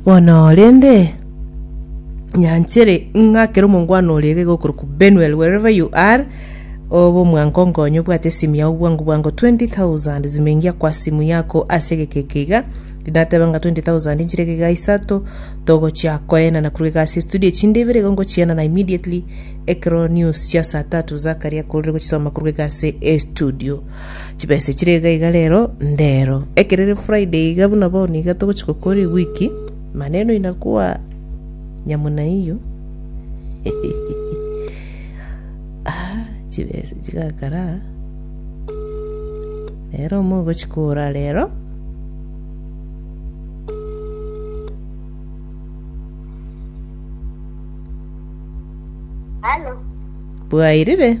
Bono rende, nyanchere ng'a kera omongwana oria iga iga okorokwa Benuel, wherever you are, obe omwango onkonye obwate esimi yao bwango bwango 20,000 zimengia kwa simu yako ase egeka eke iga. Nateba ng'a 20,000 nchire egeka isato, togochia koenana korwa iga ase estudio echinde ibere igo ngochienana immediately ekero news chia saa tatu zakaria korire gochisoma korwa iga ase estudio. Chibese chire iga iga rero ndero. Ekero ere Friday iga buna bono iga togochi gokora ewiki. Maneno inakuwa nyamuna hiyo. Ah, chibese chigakara. Rero omo ogochi kora rero. Halo, Bwairire?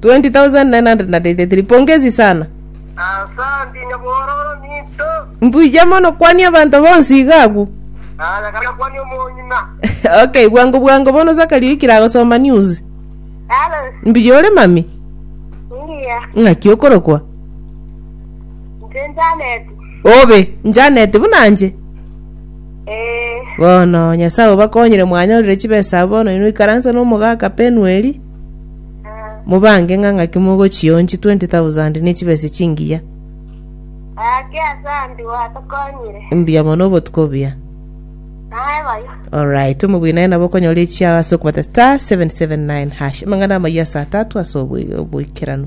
20983 Pongezi sana. Asanti nyabororo ninto. Mbuya mono kwania abanto bonsi iga agwo. Aya kana kwani omonyina. okay, bwango bwango bono Zachary oikire agosoma news. Hello. Mbuya ore mami? Mbuya. Ng'aki okorokwa? Nje Janet. Obe, Janet buna nje. Eh. Bono Nyasaye obakonyire mwanyorire chibesa bono inwe ikaranse n'omogaka Penueli. Mobange ng'a ng'aki mogochia onsi 20,000 ne chibese chingiya. Gaki ase Andy gwatokonyire. Mbuya mono obotuko buya. Naye bayo. Alright, omogwina aye nabo okonyora echiao ase okobata star 779 hash. Amang'ana amayia ase atatu ase obo- oboikeranu.